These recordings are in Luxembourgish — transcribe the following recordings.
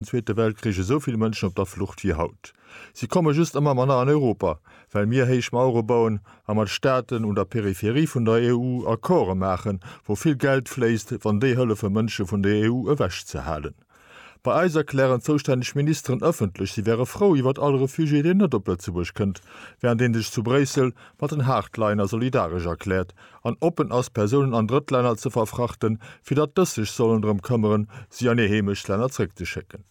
Zweete Weltkrich esou vill Mënschen op der Flucht wéi haut. Si komme just ëmmer manner an Europa, well mir héich Mauere bauen a mat Staaten un der Peripherie vun der EU Accorde maachen, wou vill Geld fléisst, wann déi hëllefe Mënsche vun der EU ewech ze halen. Bei eis erklären zoustänneg Ministeren ëffentlech, si wäre frou iwwert all Refugié, deen net op Lëtzebuerg kënnt, wärend ee sech zu Bréissel mat den Hardliner solidaresch erkläert, an oppen ass, Persounen an Drëttlänner ze verfrachten, fir datt dës sech sollen drëm këmmeren, si an hir Heemechtslänner zréckzeschécken.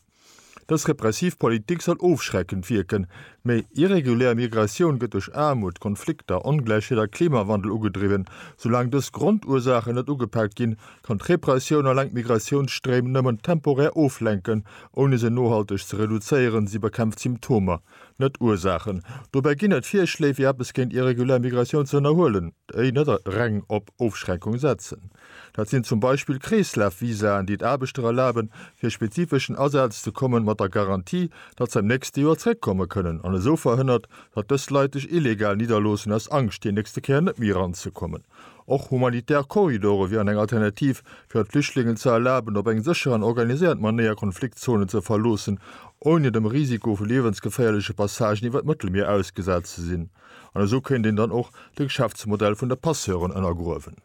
Dës repressiv Politik soll ofschreckend wierken, mee irregulär Migratioun gëtt duerch Aarmut, Konflikter, Ongläichheet a Klimawandel ugedriwwen. Soulaang dës Grondursachen net ugepaakt ginn, kann d'Repressioun eleng d'Migratiounsstréim nëmmen temporär oflenken, ouni se nohalteg ze reduzéieren, si bekämpft Symptomer, Net Ursaachen. Dobäi ginn et Virschléi, fir eppes géint irregulär Migratioun ze ënnerhuelen, déi net reng op Ofschränkung setzen. Dat sinn zum Beispill Kreeslafvisaen, déi et Aarbechter erlaben, fir spezifeschen Asaz ze kommen, mat der Garantie, datt se am nächste Joer zeréckkomme kënnen, an esou verhënnert, datt dës Leit sech illegal nidderloossen, aus Angscht, déi nächste Kéier net méi eranzekommen. Och humanitär Korridore wieren eng Alternativ, fir et Flüchtlingen ze erlaben, op eng sécher an organiséiert Manéier Konfliktzonen ze verloossen, ouni dem Risiko vu liewensgeféierleche Passagen iwwer d'Mëttelmier ausgesat ze sinn. An esou kéint een dann och de Geschäftsmodell vun de Passeuren ënnergruewen.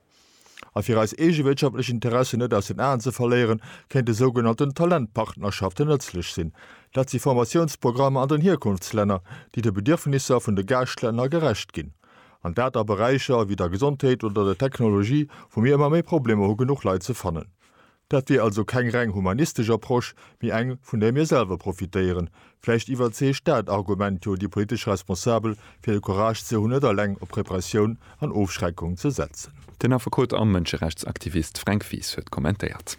A fir eis eege wirtschaftlech Interessen net aus den Aen ze verléieren, kéinte sougenannten Talentpartnerschaften nëtzlech sinn. Dat si Formatiounsprogrammer an den Hierkunftslänner, déi de Bedierfnisser vun de Gaaschtlänner gerecht ginn. an dat a Beräicher wéi der Gesondheet oder der Technologie, wou mir ëmmer méi Problemer hu genuch Leit ze fannen. Dat wier also keng reng humanistesch Approche, mee eng, vun där mir selwer profitéieren. Vläicht iwwerzeegt dat Argument jo déi politesch Responsabel, fir de Courage ze hunn, net eleng op Repressioun an Ofschreckung ze setzen. Den Affekot a Mënscherechtsaktivist Fränk Wies huet kommentéiert.